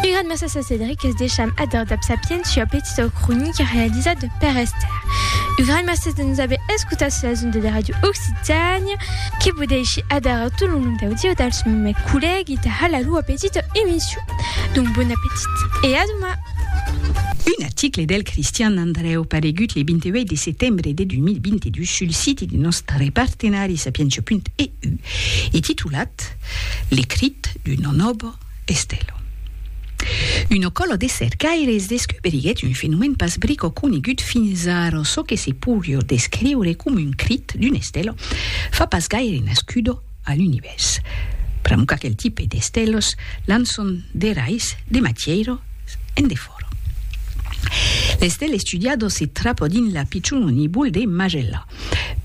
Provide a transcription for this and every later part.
Gran massa sa Cédric es deisham ador dab sapiens ua petita cronica realizada de Père Esther. U gran massa de nos aver escutat sur las ondas de Radio Occitània que vos dèishi ador a tot lo nom d'audieu dels mes collègues de Hala l'ua petita emission. Donc bon appetit e a doma! Un article del Cristian Andrèu paregut le 28 de setembre de 2022 sul siti de nòstre partenari sapientia.eu e titulat, Le crit d'un onobo estelo. Una còla de cercaires descuberiguèt un fenomèn pas brico conegut fins ara, çò que se poirió descriure coma un crit d'un estelo fa pas gaire nascudo a l'Univèrs. Pr'amor qu'aquel tipe d'estelos lançon de rais de matièira en defòra. L'estèl estudiado se trapò dins la pichona nibul de Magellà.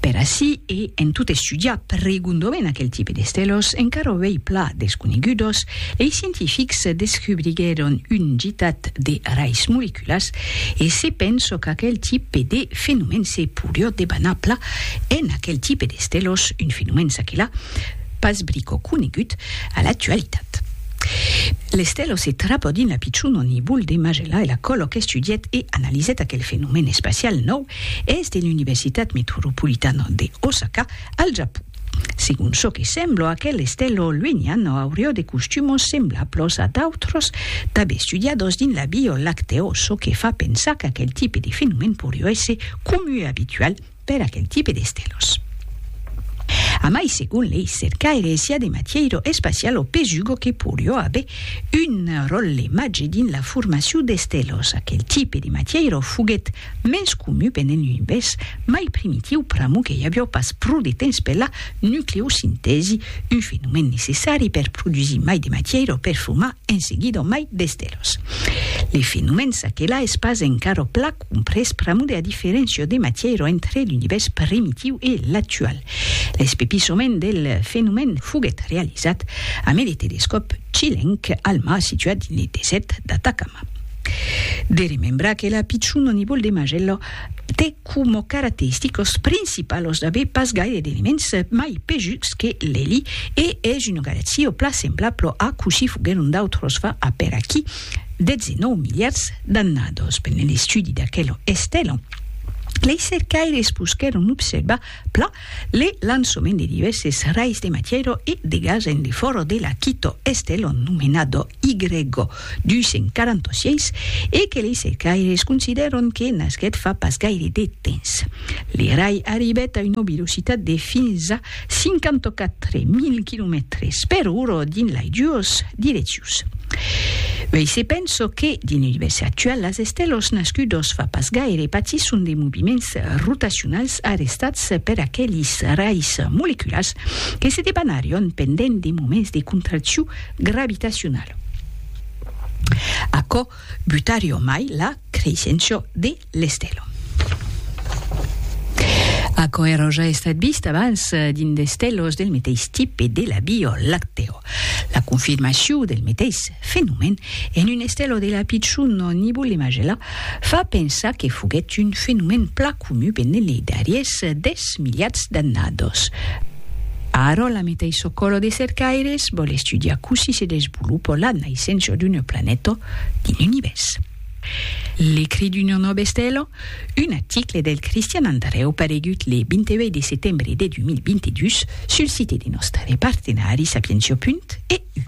Per ací e en tot estudiar pregondament aquel tipe d'estelos encara auei pla desconegudos, lei scientifics descubriguèron un gitat de rais moleculas e se penso qu'aquel tipe de fenomèn se porió debanar pla en aquel tipe d'estelos, un fenomèn ça que là pas brico conegut a l'actualitat. L'estelo se trapò dins la pichon o nibol de Magellà e la colòc estudièt e analizèt aquel fenomèn espacial nòu Es de l'Universitat Metropolitana de Osaka, al Japon. Segon çò que sembla, aquel estèlo luenian aurió de costumos semblablos a d'autros tanben estudiados dins la Via Lactèo, çò que fa pensar qu'aquel tipe de fenomèn porió èsser comu e abitual per aquel tipe d'estèlos. A mai, segon lei cercaires, i a de matièiro espacial o pesugo que porió aver un ròtle màger dins la formacion d'estèlos. Aquel tipe de matièiro foguèt Mens comu venent un bes mai primitiu pr'amor que i avió pas pro de temps per la nucleosintèsi, un fenomèn necessari per produsir mai de matièira o per formar en seguida mai d'estelos. Le fenomèn s'aquelà es pas encara pla comprés pr'amor de la diferéncia de matièira entre l'univèrs primitiu e l'actual. L'espepissament del fenomèn foguèt realizat amé le telescòp chilenc Alma situat dins le desèrt d'Atacama. De remembrar que la pichon o nivol de Magello te coma caracteristicos principalos d'aver pas gaire d'elements mai pejuts que l'eli e es una galaxia o pla semblablo a cossí foguèron d'autros fa a per aquí 19 miliards d'annados. Pendent l'estudi d'aquela estela, lei cercaires posquèron observar pla le lançament de divèrses rais de matièra e de gas en defòra de la quito estela nomenada Y246 e que lei cercaires considèron que nasquèt fa pas gaire de temps. L'erai arribèt a una velocitat de fins a 54.000 quilomètres per ora dins lai duas direccions. Uèi se pensa que, dins l'Univèrs actual, las estèlas nascudas fa pas gaire patisson de moviments rotacionals arrestats per aquelis rais moleculars que se debanarion pendent de moments de contraccion gravitacional. Aquò butari o mai la creissenço de l'estèlon. Aquò èra oja estat vist abans dins d'estèlos del meteis tipe de la Vio Lactèo. La confirmacion del meteis fenomen en un estèlo de la pichon Nibule Majella fa pensar que foguèt un fenomen plan comu benene dariés des milhats d'annados. Arò la meta i çò coro de cercaires vòl estudiar cossí se desvolupò la naissença d'una planeta dins l'univèrs. L'ecrit d'una nòva estela, un article del Cristian Andrèu paregut le 28 de setembre de 2022 sul site de nòstre partenari Sapientia. EU.